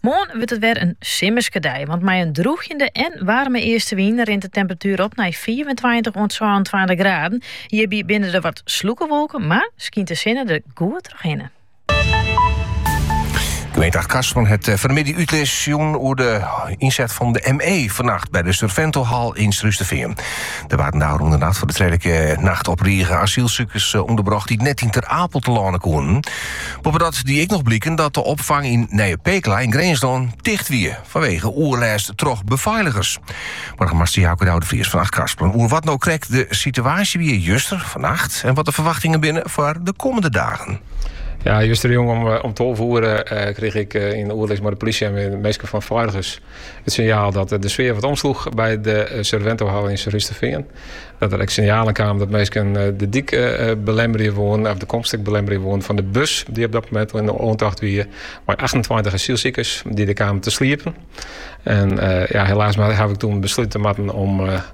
Moarn wurdt it wer in simmerske dei, want mei in drûgjende en waarme eastenwyn rint de temperatuer op nei fiifentweintich oant sânentweintich graden. Hjirby binne der wat sljurkewolken, mar skynt de sinne der goed trochhinne. Gemeente Achtkarspelen hat eh, fan 'e middei útlis jûn oer de ynset fan de ME fannacht by de Surventohal yn Surhústerfean. Der waarden dêr ôfrûne nacht foar de twadde nacht op rige asylsikers eh, ûnderbrocht dy't net yn Ter Apel telâne koenen. Boppedat die ek noch bliken dat de opfang yn Nije Pekela yn Grinslân ticht wie fanwege oerlêst troch befeiligers. Boargemaster Jouke Douwe de Vries fan Achtkarspelen oer wat no krekt de situaasje wie juster, fannacht en wat de ferwachtingen binne foar de kommende dagen. Ja, justerjûn om, eh, om 12 oere eh, kreeg ik eh, yn oerlis mei de polysje en de minsken fan feiligens. It sinjaal dat de sfear wat omsloech by de eh, Surventohal yn Surhústerfean. Dat der ek sinjalen kamen dat minsken eh, de dyk eh, belemmerje woenen, of de komst ek belemmerje woenen fan de bus dy't op dat momint yn oantocht wie mei 28 asylsikers dy't der kamen te sliepen. En ja, helaas haw ik toen beslute moatten om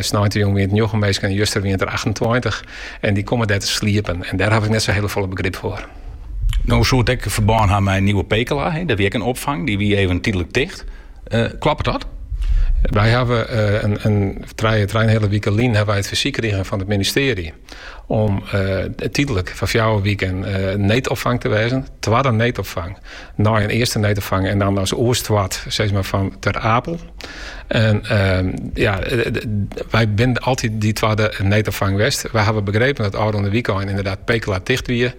Sneintejûn wiene it njoggen minsken en juster wiene it der achtentweintich. En dy komme dêr te sliepen. En dêr haw ik net sa hiele folle begrip foar. No soe it ek ferbân ha mei Nieuwe Pekela. Der wie ek in opfang, dy wie even tydlik ticht. Kloppet dat? Wy hawwe trije, trije-en-heale wike lyn hawwe wy it fersyk krigen fan it ministearje. Om tydlik foar fjouwer wiken needopfang te wêzen, twadde needopfang, nei in earste needopfang en dan as oerstoart sis mar fan Ter Apel. En ja, wy binne altyd dy twadde needopfang west. Wy hawwe begrepen dat ôfrûne wykein inderdaad Pekela ticht wie.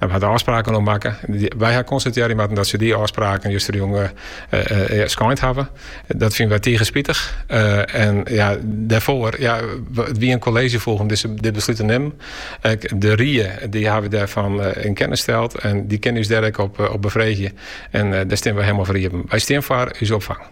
No, wy ha dêr ôfspraken oer makke. Wy ha konstatearje moatten dat se dy ôfspraken justerjûn skeind hawwe. Dat fine wy tige spitich. En ja, dêrfoar, ja, it wie in kolleezjefoech om dit beslút te nimmen. Ek de rie dy hawwe dêrfan yn kennis steld en dy kinne ús dêr ek op befreegje. En dêr stean wy helemaal foar iepen. Wy stean foar ús opfang.